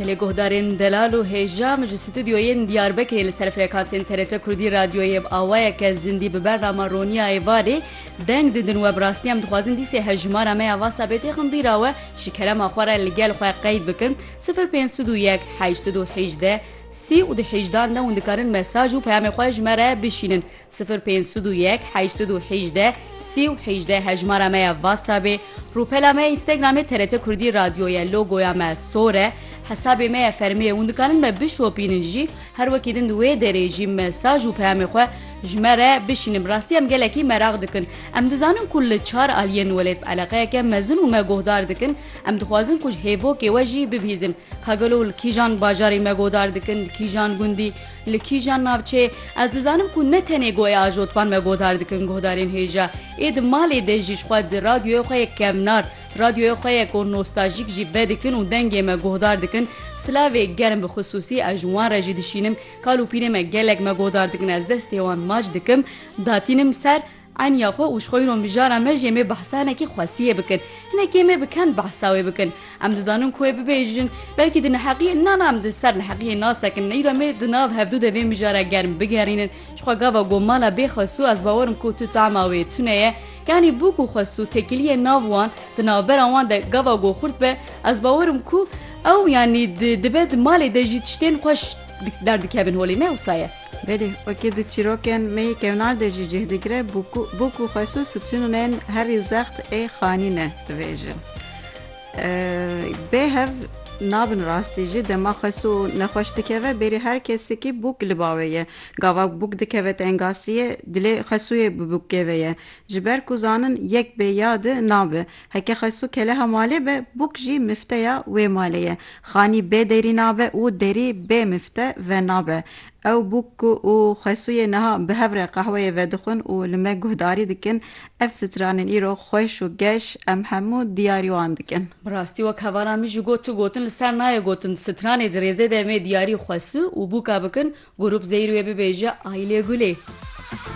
Bi lê guhdarên delal û hêja min ji stûdyoyên Diyarbekirê li ser frekansên TRT Kurdî radyoyê bi awayeke zindî bi bernama Roniya Êvarê deng didin we bi rastî em dixwazin dîsê hejmara me ya vasa bêtêxim bîra we ji kerema xwe re li gel xwe qeyd bikin sifir pênc sed û yek heşt sed û hêjdeh sî û du hêjdan de hûn dikarin mesaj û peyamê xwe ji me re bişînin. Sifir pênc sud û yek heşt sud û hêjdeh sî û hêjdeh hejmara me ya Whatsappê, rûpela me ya Instagramê TRT Kurdî Radyo ye, logoya me sor e, hesabê me ye fermî ye, hûn dikarin me bişopînin jî, her wekî din di wê derê jî mesaj û peyamê xwe ji me re bişînin. Bi rastî em gelekî meraq dikin. Em dizanin ku li çar aliyên welêt bi eleqeyeke mezin û me guhdar dikin. Em dixwazin ku ji hêvokê we jî bibihîzin. Ka gelo li kîjan bajarî me guhdar dikin, li kîjan gundî? Li kîjan navçeyê? Ez dizanim ku ne tenê goya ajotvan me guhdar dikin guhdarên hêja. Ê di malê de jî ji xwe di radyoya xwe yê kevnar, di radyoya xwe yê ku nostajîk jî vedikin û dengê me guhdar dikin. Silavê germ bi xisûsî ez ji wan re jî dişînim. Kal û pîrê me gelek me guhdar dikin ez destê wan mac dikim datînim ser. Eniya xwe û ji xwe îro mijara me jê mê behsa hinekî xwesiyê bikin. Hinekê me bi ken behsa wê bikin. Em dizanin ku wê bibêjin. Belkî di neheqiyê na na em di ser neheqiyê nasekin. Îro mê di nav hevdu de vê mijara germ bigerînin. Ji xwe gava got mala bê Xwesû ez bawer im ku tu tahma wê tune ye. Yanî bûk û Xwesû tekiliyê nav wan di navbera wan de gava got xurt be ez bawer im ku ew yanî dibe di malê de jî tiştên xweş derdikevin holê. Ne wisa ye. Belê, wekî di çîrokên me yê kevnar de jî cih digire, bûk û xwesu sitûnûnên herî zext ê xanî ne dibêjin. Bê hev nabin rastî jî dema xwesu nexweş dikeve bêrî her kesekî bûk li bawê ye. Gava bûk dikeve tengasîyê, dilê xwesûyê bi bûkê ve ye. Ji ber ku zanin yek bê ya di nabe. Heke Xesu keleha malê be, bûk jî mifteya wê malê ye. Xanî bê derî nabe û derî bê mifte ve nabe. Ew bûk ku û Xesuyê niha bi hev re qehweyê vedixwin û li me guhdarî dikin, ev stranên îro xweş û geş em hemû diyarî wan dikin. Bi rastî wek hevalan min jî got tu gotin li ser nayê gotin stranê dirêzê de em ê diyarî Xesu û bûka bikin, Gurup Zeyir wê bibêje Aylê Gulê.